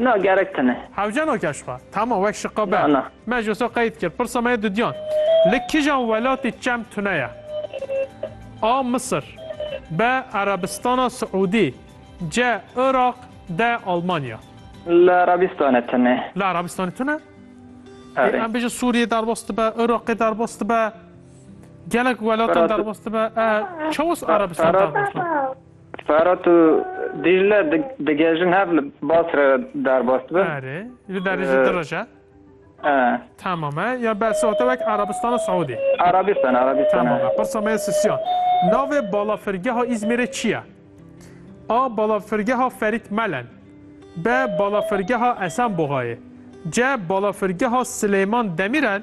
Na gerek tine. Hewcano ke şixwe. Tamam wek şiqa be. Na na. Me ji wisa qeyd kir. Pirsa me yê dudiyan. Li kijan welatî çem tune ye? A. Misir B. Erebistana Siûdî C. Iraq D. Almanya Li Erebistanê tune. Li Erebistanê tune? Erê. Em bêjin Sûriyê derbas dibe, Iraqê derbas dibe. Gelek welatan derbas dibe. E, Çawa Erebistan derbas dibe? Ferat û Dîcle digihêjin hev li Basrê re derbas dibin. Erê, li derê jî du roj e. Ee. Tamam e. Ya behsa te wek Arabistana Siûdî. Arabistan, Arabistan. Tamam e. Pirsa me ye Sisyan. Navê balafirgeha Îzmîrê çi ye? A. Balafirgeha Ferît Melen. B. Balafirgeha Esenboxayê. C. Balafirgeha Silêman Demîrel.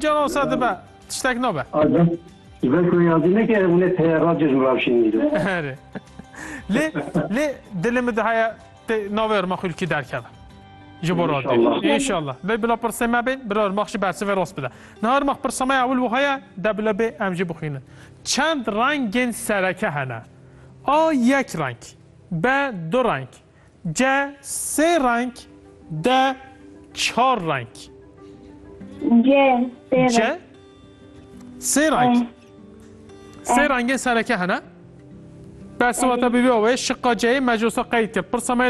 Cana wisa dibe tiştek nabe. Ji ber ku yazî neke hûne peye ra cejn rawşîn îro. Erê. Lê lê dilê min dihaya tê navê Irma Xulkî derkeve. Ji bo radyo. İnşallah. İnşallah. Lê bila pirsê me bên bila Irma xi bersivê rast bide. Niha Irma pirsa me ewil wihaya de bila bê em jî bixwînin. Çend rengên sereke hene? A yek reng. B du reng. Cê sê reng, dê çar reng. Cê sê reng. Cê sê reng. E. Sê rengê sereke hene. Bersivata bîbî ewê şiqa C'yê mecosa qeyd kir. Pirsa me